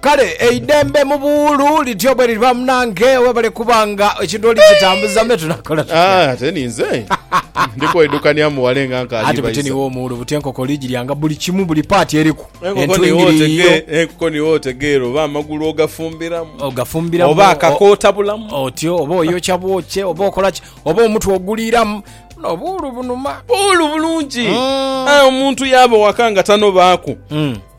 Kale eidembe mu buwuulu lityo bweliriba munange, webale kuba nga ekintu oli kitambuza me tunakola tutya. Ate ninze ndi kwedukania muwale nga nkaali Anti butini baisa. w'omuwuulu buti enkoko oli giryanga buli kimu buli paati eriku. Enkoko niwo Entwingiri yiyo otege, enkoko niwo otegeera oba amagulu ogafumbiramu, ogafumbiramu oba o- akakootabulamu. otyo oba oyokya bwokye oba okola ki oba omutwe oguliiramu buno obuwuulu bunuma. Buwuulu bulungi. Mm. Aye omuntu yaaba waka nga tanobaaku. Mm.